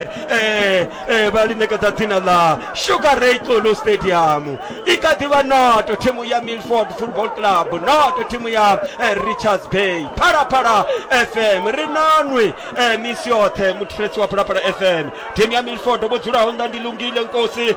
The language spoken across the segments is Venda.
eh eh vha lingedza dzina ḽa sugar ray xulu stadium i kha ḓi vha noto thimu ya milford football club noto thimu ya eh, richards bay phalaphala fm ri nanwi eh, misi yoṱhe muthetsisi wa phalaphala fm thimu ya milford vho dzulaho nnḓa ndi lungile nkosi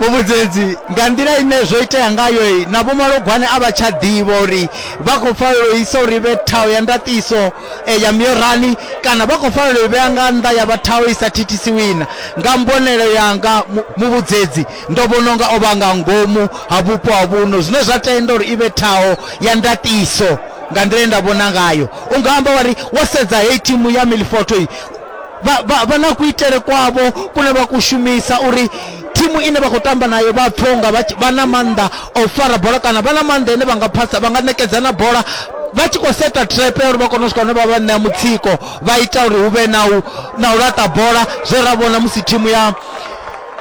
muvhudzedzi nga nḓila ine zwo itea ngayo na vhomalogwane a vha tsha ḓivha uri vha khou fanela u isa uri vhe thaho ya ndaṱiso eh, ya miorani kana vha khou fanela u vhea nga nnḓa ya vha thaho i sa thithisiwina nga mbonelo yanga muvhudzedzi ndo vhona unga o vha nga ngomu ha vhupo ha vhuno zwine zwa tenda uri i vhe thaho ya ndaṱiso nga nḓila ye nda vhona ngayo u nga amba wari wo sedza heyi thimu ya milfoto vha, vha, vha na kuitele kwavho kune vha kushumisa uri thimu ine vha khou tamba nayo vha pfhe unga vha tshi- vha na maanḓa a u fara bola kana vha na maanḓa ane vha nga phasa vha nga ṋekedza na bola vha tshi khou seta trap ya uri vha kone u swika hune vha vha ṋea mutsiko vha ita uri hu vhe na u na u laṱa bola zwe ra vhona musi thimu ya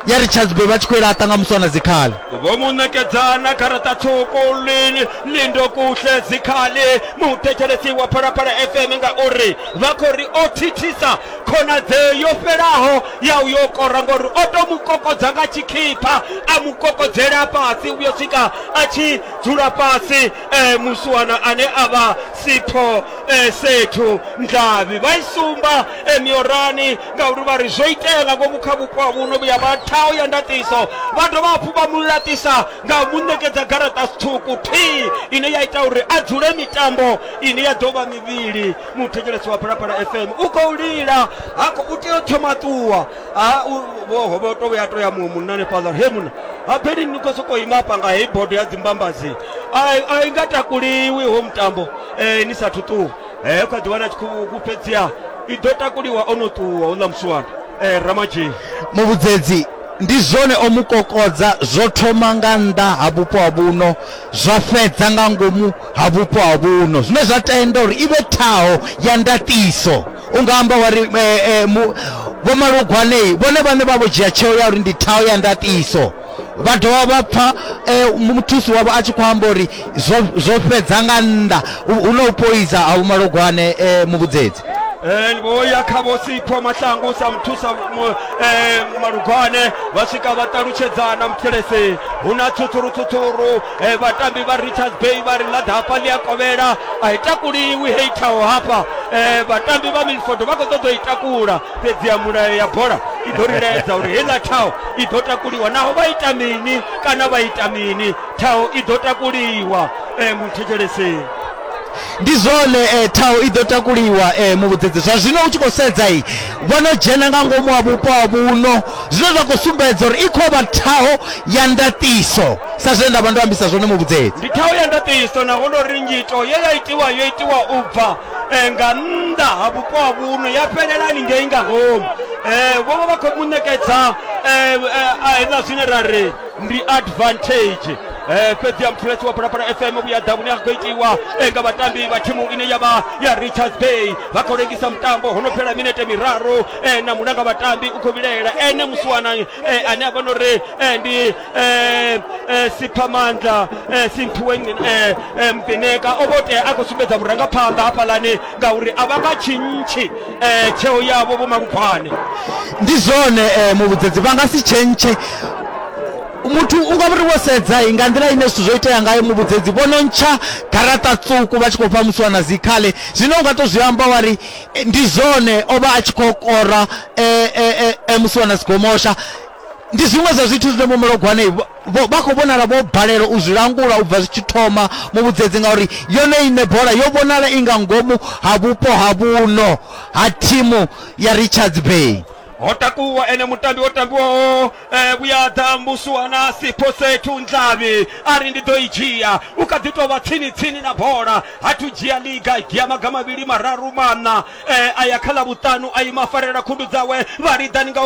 ya richards bay vha tshi khou i laṱa nga muswana dzikhali vho mu ṋekedzana garaṱa tswuku lini lindo kuhle dzikhali muthetshelesi wa phalaphala fm ngauri vha khou ri o thithisa khonadzeo yo fhelaho ya u yo kora ngori o to mu kokodza nga tshikhipha a mu kokodzela fhasi uyo swika a tshi dzula fhasi um muswana ane a vha sipho um sethu ndlavhi vha i sumba um miorani ngauri vha ri zwo itea nga ngomu kha vhupo ha vhuno vhuya vha thaho ya ndatiso vha dovha hafhu vha mu laṱisa nga u mu ṋekedza garaṱa ṱhukhu thii ine ya ita uri a dzule mitambo ine ya ḓo vha mivhili muthetshelesi wa phalaphala fm u khou lila ha khou tea u thoma ṱuwa ha vho to vhuya to ya muṅwe munna hanefhaḽa he munna habeli ni khou sokou ima hafha nga heyi bodo ya dzimbambazi a i nga takuliwi ho mutambo um ni sathu ṱuwa eh, u kha ḓi wana tshi khou fhedziha i ḓo takuliwa o no ṱuwa u ḽa musiwana eh, ramadzhii muvhudzedzi ndi zwone o mu kokodza zwo thoma nga nnḓa ha vhupo ha vhuno zwa fhedza nga ngomu ha vhupo ha vhuno zwine zwa tenda uri i vhe ṱhaho ya ndaṱiso u nga amba wa ri eh, eh, mu- vho malugwanei vhone vhane vha vho dzhia tsheo ya uri ndi ṱhaho ya ndaṱiso vha dovha vha pfa eh, muthusi wavho a tshi khou amba uri zwo zwo fhedza nga nnḓa hu hu na u poisa ha vhumalogwane eh, muvhudzedzi Eh, vho ya kha vho sipho mahlangu sa muthusa mu- eh, malugwane vha swika vha ṱalutshedzana muthelese hu na tsutsurutsutsuru eh, vhatambi vha richards bay vha ri ḽaḓa hafha ḽi a kovhela a i takuliwi hei thaho hafha eh, vhatambi vha milford vha khou ṱoḓa u i takula fhedzi ya mulayo ya bola i ḓo ri laedza uri heiḽa thaho i ḓo takuliwa naho vha ita mini kana vha ita mini thaho i ḓo takuliwa um muthetsheleseni ndi zwone eh, thaho i ḓo takuliwa eh, muvhudzedzi zwa zwino u tshi khou sedza i vho no dzhena nga ngomu ha vhupo ha vhuno zwine zwa khou sumbedza uri i khou vha thaho ya ndaṱiso sa zwe nda vha ndo ambisa zwone muvhudzedzi ndi thaho ya ndaṱiso naho no ri nyito ye ya itiwa yo itiwa u bva eh, nga nnḓa ha vhupo ha vhuno ya fhelelani ngei nga ngomu eh, vho vha vha khou mu ṋekedza eh, eh, a hezwiḽa zwine ra ri ndi advantage eh, fhedzi ya muthuletshi wa phalaphala fm vhuya ḓa vhune ha khou itiwa eh, nga vhatambi vha thimu ine ya vha ya richards bay vha khou lengisa mutambo ho no fhela minete miraru eh, na mulanga vhatambi u khou vhilaela ene musiwana eh, ane a vha no ri eh, ndi eh, eh, siphamandla eh, simphiwe Ngci- eh, eh, mvineka o vho tea a khou sumbedza vhurangaphanḓa hafhaḽani ngauri a vha nga tshintshi eh, tsheo yavho vho malufhane ndi zwone eh, muvhudzedzi vha nga si tshentshe muthu u nga vhuri wo sedza i nga nḓila ine zwithu zwo itea ngayo muvhudzedzi vho no ntsha garaṱa tswuku vha tshi khou fha musiwana dzikhale zwino u nga to zwi amba wa ri Eh, ndi zwone o vha a tshi khou kora eh, eh, eh, eh, musi wana sigomosha ndi zwiṅwe zwa zwithu zwine vho malogwane vho- vho- vha khou vhonala vho balelwa u zwi langula u bva zwi tshi thoma mu vhudzedzi ngauri yone ine bola yo vhonala i nga ngomu ha vhupo ha vhuno ha thimu ya richards bay ho takuwa ene mutambi o tambiwaho Eh, vhuya ḓa musuwa na siposetu nḓlavhi a ri ndi ḓo i dzhia u kha ḓi tou vha tsini tsini na bola ha thu dzhia liga ya maga mavhili mararu maṋa eh, a ya kha ḽa vhuṱanu a ima farela khundu dzawe vha liḓani nga u